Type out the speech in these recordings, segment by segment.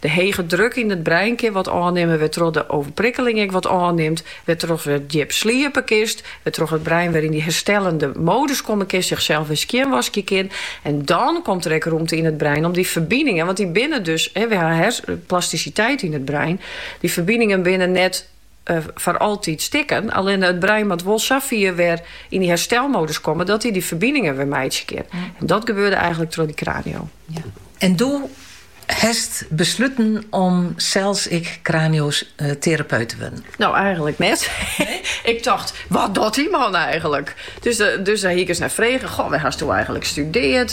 De hege druk yn it brein kin wat ôfnimme wêrtroch't de oerprikkeling ek wat ôfnimt, wêrtroch't wer djip sliepe kinst, wêrtroch't it brein wer yn dy herstellende modus komme kinst, sichsels wer skjinwaskje kin. En dan komt der ek rûmte yn it brein om dy ferbiningen, want dy binne dus, we ha hersensplastisiteit yn it brein, dy ferbiningen binne net, foar altyd stikken. Allinne it brein moat wol safier wer yn dy herstelmodus komme dat hy dy ferbiningen wer meitsje kin. En dat gebeurde eigenlik troch dy kranio. En doe hast besluten om sels ek kranioterapeut te wurden? No, eigenlik net. Ik tocht, wat docht dy man eigenlik? Dus dêr hie ik ris nei frege, goh, wêr hasto eigenlik studeard?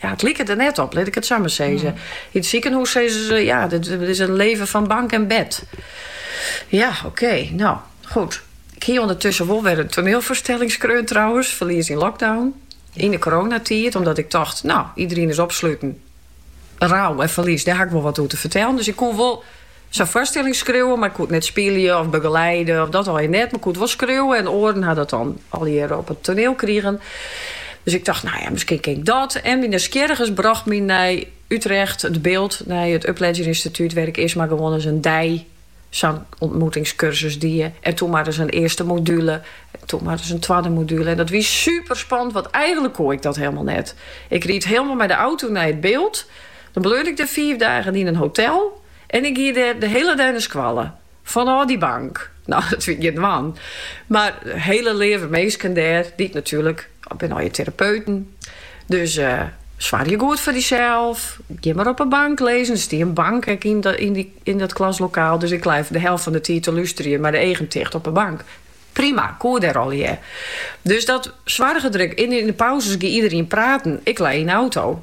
ja, it liket der net op, lit ik it sa mar sizze. Mm. Yn it sikehûs sizze se, ja, dit, is een leven van bank en bed. Ja, oké, no, goed. Ik hie ûndertussen wol wer in toanielfoarstelling skreaun trouwens, Verlies in lockdown. Yn de koroanatiid, omdat ik tocht, no, iderien is opsluten. Rou en ferlies, dêr ha ik wol wat oer te fertellen. Dus ik koe wol Sa'n foarstelling skriuwe, mar ik koe it net spylje of begeleide, of dat allegear net, mar ik koe it wol skriuwe en oaren ha dat dan allegear op it toaniel krigen. Dus ik tocht, no ja, miskien kin ik dat. En myn nijsgjirrigens brocht my nei Utrecht, De Bilt, nei it Upledger Instituut, wêr't ik earst mar gewoan ris in dei sa'n ûntmoetingskursus die en toen mar ris in earste module en toen mar ris in twadde module. En dat wie superspannend, want eigenlik koe ik dat hielendal net. Ik ried hielendal mei de auto nei It Bilt. Dan bleau ik der fiif dagen yn in hotel en ik gie dêr de hiele dei nei skoalle, fanôf dy bank. No, dat wie gjin dwaan, mar hiele leave minsken dêr, dy't natuerlik it binne allegear terapeuten. Dus soargje goed foar dysels, gean mar op 'e bank lizze, der stie in bank ek yn dat klaslokaal, dus ik lei de helft fan 'e tiid te lústerjen mei de eagen ticht op 'e bank. Prima, koe dêr allegear. Dus dat soarge der ek yn, yn 'e pauzes gie iderien praten, ik lei yn 'e auto.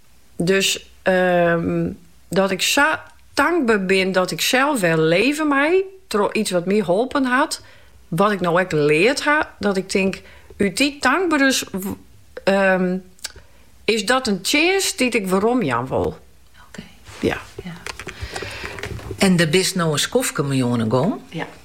Dus dat ik sa tankber bin dat ik sels wer leve mei troch iets wat my holpen hat, wat ik no ek leard ha, dat ik tink, út dy tankberens is dat in tsjinst dy't ik weromjaan wol. En dêr bist no in skoftke mei oan 'e gong?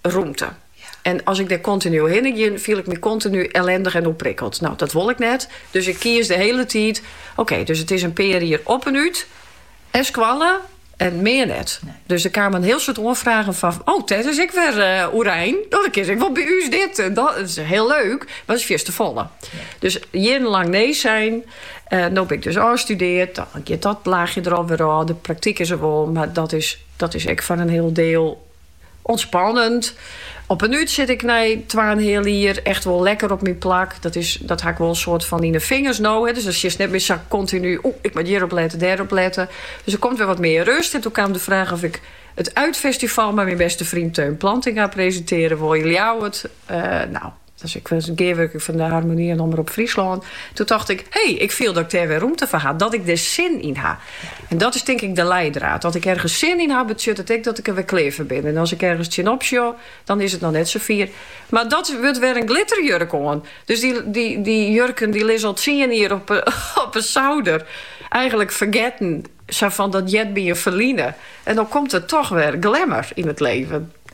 rûmte. En as ik dêr kontinu hinne gean, fiel ik my kontinu ellendich en oerprikkeld. No, dat wol ik net. Dus ik kies de hiele tiid, oké, dus it is in pear jier op en út nei skoalle en mear net. Dus der kamen in hiel soad oanfragen fan, oh, dat is ek wer uh, eh, oerein. Oh, dan kinst ek wol by ús dit. En dat is hiel leuk, mar is fierste folle. Dus jierrenlang nee sein. Uh, no bin ik dus ôfstudeard. Dan giet dat laachje der alwer ôf. De praktyk is der wol, mar dat is, dat is ek fan in hiel diel Ûntspannend. Op en út sit ik nei twa en in heal jier echt wol lekker op myn plak. Dat is, dat ha ik wol in soad fan yn 'e fingers no. Dus dan sjochst net mear sa kontinu, o, ik moat hjirop lette, dêrop lette. Dus der komt wer wat mear rust. En doe kaam de fraach oft ik it Uitfestival mei myn beste fryn Teun Plantinga presintearje woe. Ljouwert, nou. as ik was gearwurking fan de Harmonie en Omrop Fryslân, doe tocht ik, hey, ik fiel dat ik dêr wer rûmte foar ha, dat ik der sin yn ha. En dat is tink ik de leidraad. Dat ik ergens sin yn ha, betsjut it ek dat ik der wer klear foar bin. En as ik ergens tsjinop sjoch, dan is it noch net safier. Mar dat wurdt wer in glitterjurk oan. Dus dy, dy, dy jurken dy lizze al tsien jier op, op een souder. Eigenlijk fergetten, sa fan dat heart by in ferline. En dan komt der toch wer glamour yn it leven.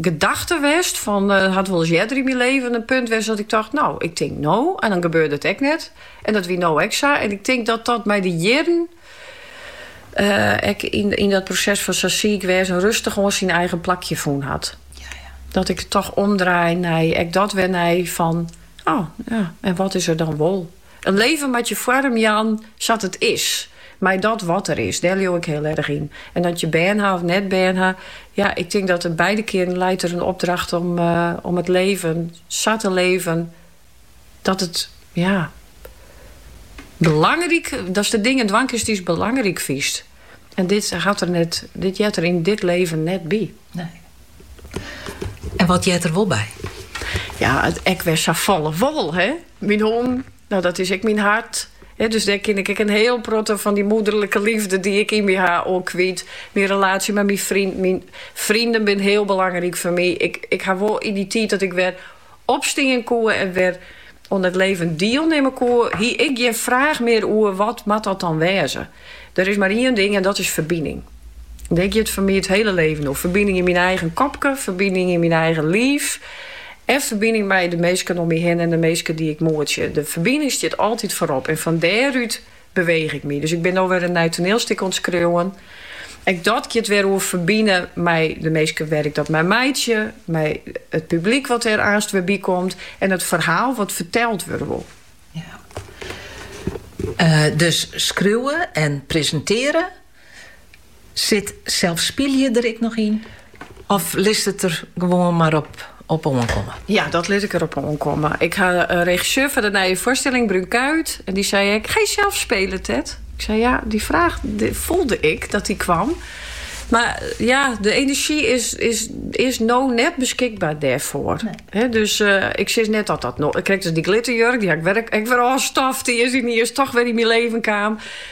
gedachte west fan hat wol ris earder yn myn leven in punt west dat ik tocht no ik tink no en dan gebeurde it ek net en dat wie no ek sa en ik tink dat dat mei de jierren ek yn dat proses fan sa siik west en rêstich oan syn eigen plakje fûn hat dat ik it toch omdraai nei ek dat wer nei fan oh ja en wat is er dan wol. In leven moat je foarm jaan sa't it is, mei dat wat der is, dêr leau ik hiel erg yn. En dat je bern ha of net bern ha, ja, ik tink dat der beide kearen leit der in opdracht om it leven sa te leven dat it, ja, belangryk, datst de dingen dwaan kinst dy'tst belangryk fynst. En dit hat der net, dit heart der yn dit leven net by. En wat heart der wol by? Ja, ek wer safolle wol, hè? Myn hûn, no dat is ek myn hart. Dus dêr kin ik ek in hiel protte fan dy moederlike liefde dy't ik yn my ha, oan kwyt. Myn relaasje mei myn fryn, myn frinen binne hiel belangryk foar my. Ik ha wol yn dy tiid dat ik wer opstean koe en wer oan it leven dielnimme koe, hie ik gjin fraach mear oer wat moat dat dan wêze. Der is mar ien ding en dat is ferbining. Dêr giet foar my it hiele leven oer, ferbining yn myn eigen kopke, ferbining yn myn eigen liif en ferbining mei de minsken om my hinne en de minsken dy't ik moetsje. De ferbining stiet altyd foarop en fan dêrút Beweech ik my. Dus ik bin no wer in nij toneelstik oan it skriuwen. Ek dat giet wer oer ferbine mei de minsken wêr't ik dat mei meitsje, mei it publyk wat dêr aanst wer by komt en it ferhaal wat ferteld wurde wol. Ja. Dus skriuwe en presintearje Sit sels spyljen der ek noch yn of litst it der gewoan mar op oankomme? Ja, dat lit ik der op oankomme. Ik ha de regisseur fan de nije foarstilling, Brun Kuijt, en dy sei, Ga je zelf spelen, Ted? Ik sei ja, dy fraach foelde ik dat dy kaam. Mar ja, de enerzjy is, is, is no net beskikber dêrfoar. dus uh, ik sis net dat dat no. Ik, krekt as dy glitterjurk, dy ha ik wer, ek wer ôfstoft. Dy is dy is toch wer yn myn leven kaam.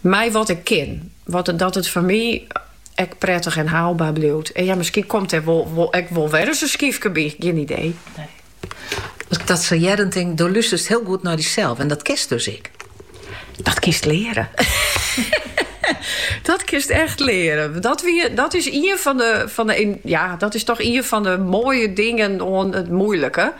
Mei wat ik kin. Wat dat it foar my ek prettich en haalbaar bliuwt. En ja, miskien komt dêr wol ek wol werris in skyfke by. Gjin idee. Nee. As ik dat sa hearren tink, do lústerst hiel goed nei dysels. En dat kinst dus ek. Dat kinst leare. Dat kinst echt leren. Dat, wie, dat is ien fan de, fan de. Ja, dat is toch een van de mooie dingen aan het moeilijke.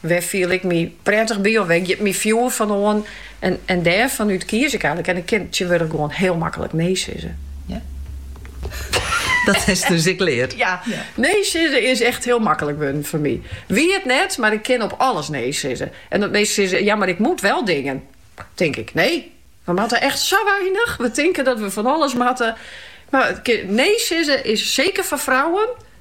Wêr fiel ik my pretich by of wêr giet myn fjoer fan oan? En dêrfan út kies ik eigenlik. En ik kin tsjintwurdich gewoan hiel maklik nee sizze. Ja. Dat hast dus ek leard. Ja, nee sizze is echt hiel maklik wurden foar my. Wie it net, mar ik kin op alles nee sizze. En dat minsken sizze, ja, mar ik moat wel dingen. Tink ik, nee, we moatte echt sa weinich. We tinken dat we fan alles moatte. Mar nee sizze is, seker foar frouwen,